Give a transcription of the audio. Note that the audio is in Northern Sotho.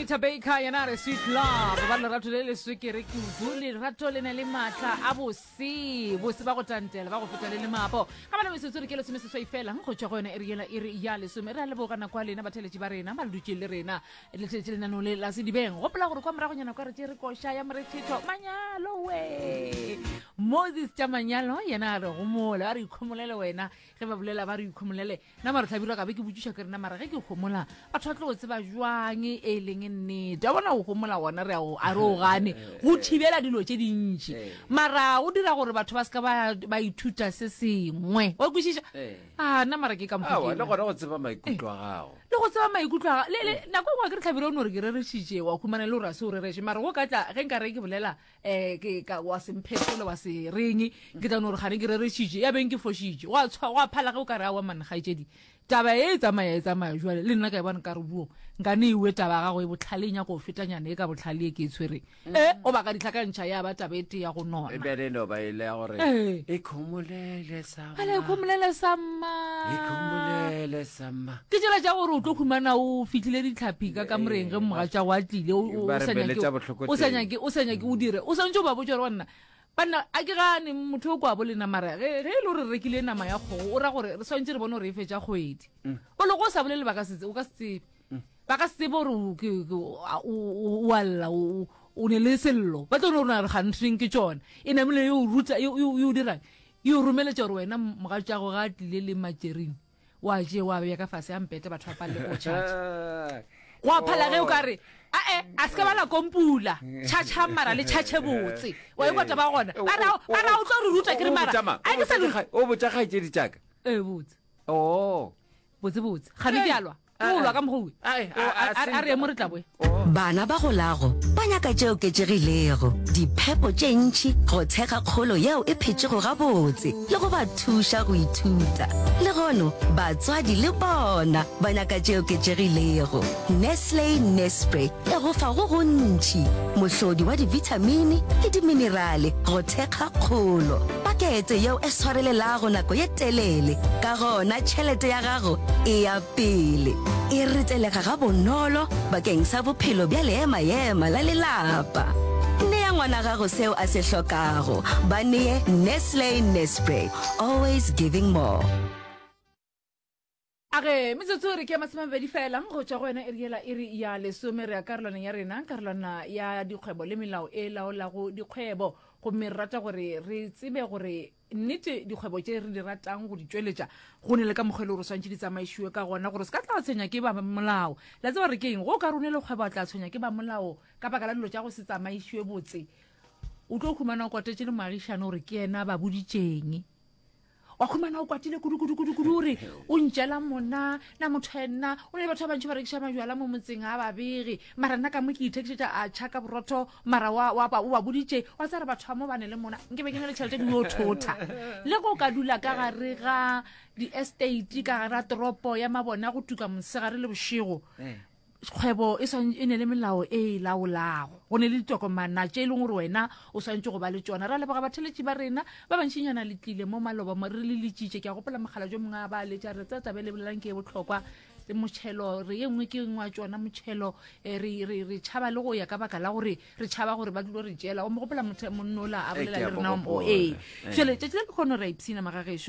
Anita Baker yena re sweet love ba lerato le le swekere kudu lerato le na le maatla a bose bose ba go tantela ba go feta le le mapo ka bana metsotso re ke lesome seswai fela go tswa go yone e re yela e re ya lesome re a lebogana kwa lena batheletši ba rena ba le dutšeng le rena le tletše lenanong le la sedibeng gopola gore kwa moragonyana kwa re tše re koša ya morethetho manyalo we moses tša manyalo yena a re gomole a re ikhomolele wena ge ba bolela ba re ikhomolele Na mara Hlabirwa ka be ke botšiša ke rena mara ge ke homola batho ba tlo go tseba jwang e leng nnete a bona o homola gona re ao a re o gane go thibela dilo tše dintši eh. mara o dira gore batho ba se ka ba ithuta se sengwe wa kwešiša eh. a ah, na mara ke ka mokgole gona go tseba maikutlo a eh. gago le go tseba maikutlo a gago nako engwe ke re tlhabire o ne gore ke rerešitše wa humana le gore a se o rereše mara go ka tla ge nka re ke bolela um ke ka wa semphetolo wa se reng ke tla no gore gane ke rerešitše ya beng ke fošitše gwa tshwa gwa phala ge o ka re a wa mannagaetšedi taba e e tsamaya e tsamaya jale le nna ka e bone ka re buo nka ne ewe taba gago e botlhale e nyako go fetanyana e ka botlhale e ke e tshwereng mm. e o baka ditlhakantšha ya ba taba e te ya go nona e bere no ba ile ya gore e khomolele sa a le khomolele samma ikhomolele samma ke tsela tša gore o tlo humana o fitlhile ditlhaphi ka kamoreng ge moga tša wa tlile o- o- Ba o re sa nyake- beletša bohloko o sa teng. nyake o sa nyake o dire o swantse o ba botša gore banna banna a ke gane motho o kwa bo lena mara ge ge e le gore re rekile nama ya kgogo o ra gore re swantse re bone gore e fetša kgwedi o loko o sa bolele ba ka se tse- o ka se tsebe ba ka se tsebe gore o- ke- ke- o- a- o- o- o alla o o- o ne le sello ba tlo no rona re gantring ke tsona e namile yo o ruta yo yo- yo o dirang E o romeletša gore wena mogatšago ga a tlile le matšerini, o a tšee o a bea ka fase a mpete batho ba palele go o tšhatša. Go a phala ge o ka re, A-e, a se ke ba la kompula. Tšhatšhang mara le tšhatšhe botse. Wa ikwa taba gona? Ba ra, ba ra o tlo re ruta ke re mara. A ke sa le. O botša kgaetšedi tša ka. Ee, botse. Oo, botsebotse gane ke alwa ke go lwa ka mogowe a re emo re tlaboe bana ba golago ba nyaka tše oketšegilego diphepo tše ntšhi go tshega kgolo yeo e phetšego gabotse le go ba thuša go ithuta le gono batswadi le bona ba nyaka tše oketšegilego nestle nespre Phegofa go gontši, mohlodi wa dibithamini le diminerale go thekga kgolo. Pakete yeo e swarelelago nako ye telele, ka gona tšhelete ya gago e ya pele. E ritelega gabonolo bakeng sa bophelo bja leema-ema la lelapa. Nea ngwana gago seo a se hlokago. Ba nee Nestle Nespre, always giving more. A Ge metsotso e re ke ya masemamabedi fela go tšwa go yona e re yela e re ya lesome, re ya karolwaneng ya rena, karolwana ya dikgwebo le melao e laolago dikgwebo. Gomme re rata gore re tsebe gore nnete dikgwebo tše re di ratang go di tšweletša go ne le ka mokgwa e le gore swantšhe di tsamaišiwe ka gona gore se ka tla tshwenya ke ba molao. Le a tseba gore ke eng? Go ka rune le kgwebo a tla tshwenya ke ba molao ka baka la dilo tša go se tsamaišiwe botse. O tlo humana o kotetše le moagišane gore ke yena ba boditšeng. wa khumana o kwatile kudukudukudukudu ore o ntšela mona na motho ya nna o ne le batho ba bantšhi ba rekiša majala mo motseng a babege mara nna ka mo ke ithekišetša a tšhaka borotho mara o ba boditše wa tsare batho ba mo bane le mona nke be ke ne le tšhelete ke yo thotha le go ka dula ka gare ga di-estate ka gare ga toropo ya mabona go tuka mosegare le bošego eh. kgwebo e, e ne le melao e e laolago go ne le ditokomana tše e leng gore wena o swantse go ba le tsona ra leboga batheletši ba rena ba bantšinyana le tlile mo maloba mo re le letsitše ke a gopola mogala jo mongwe a ba letša re tsa tabe lebelelang ke e botlhokwa motšhelo re ye nngwe ke ngwe wa tsona motšhelo eh, re tšhaba le go ya ka baka la gore re tšhaba gore ba tlilo re tšela o mo gopola monnola a eh, bolela le rena o ee eh. tšele tšatši la dikgono ra ipsina magageso